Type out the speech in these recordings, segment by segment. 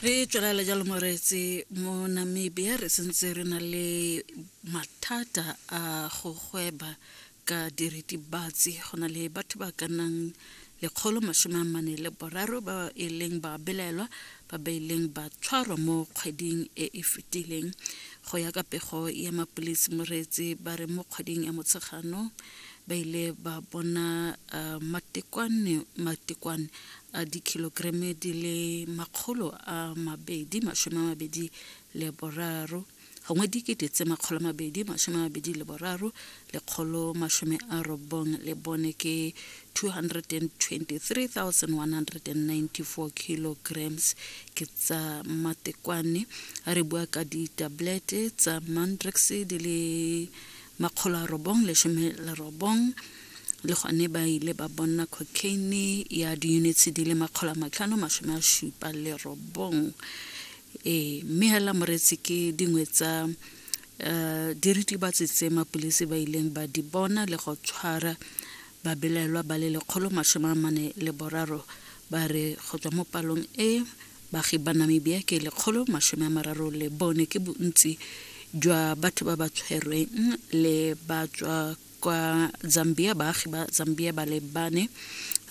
re tswelela jalo moreetse mo namibia re sentse re na le mathata a go gweba ka diritibatsi go na le batho ba ka nnang lekgolo masome a mane le boraro ba e leng ba belaelwa ba ba ileng ba tshwarwa mo kgweding e e fetileng go ya ka pego ya mapolisi moreetse ba re mo kgweding ya motshegano ba ile ba bona uh, matekwane matekwane a dikhilogreme di le makgolo a mabedi masome a mabedi le boraro gongwe dikete tse makgolo a mabedi masome a mabedi le boraro lekgolo masome a robong le bone ke 223194 kilograms ke tsa matekwane a re bua ka ditablete tsa mandrex di le makgolo a robong lesome le robong le gone ba ile ba bonna cocaine ya di-units di le makgolo a matlhano masome a supa le robong ee mme hela moretsi ke dingwe tsa um eh, diritibatsi tse mapolisi ba ileng ba di bona le go tshwara babelaelwa ba le lekgolo masome a mane le boraro ba re go tswa mo palong e baagi ba namibia ke lekgolo masome a mararo le bone ke bontsi jwa batho ba ba tshwerweng le ba tswa kwa zambia baagi ba zambia ba le bane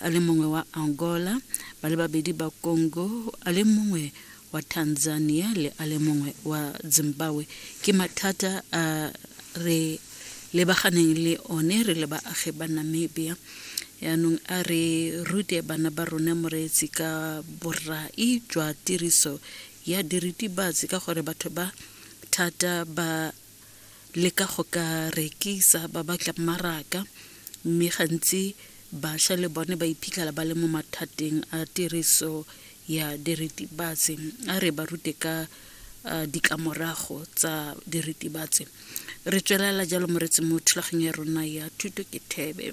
a le mongwe wa angola ba le babedi ba congo a le mongwe wa tanzania le a le mongwe wa zimbabwe ke mathata a re lebaganeng le one re le baagi ba namibia yaanong a re rute bana ba rona moreetsi ka borai jwa tiriso ya diritibatsi ka gore batho ba thata ba le ka go ka rekisa ba batla mmaraka mme gantsi bašwa le bone ba iphitlhela ba le mo mathateng a tiriso ya diritibatsi a re ba rute ka ditlamorago tsa diritibatsi re tswelela jalo moretsi mo thulaganyo ya rona ya thuto ke thebe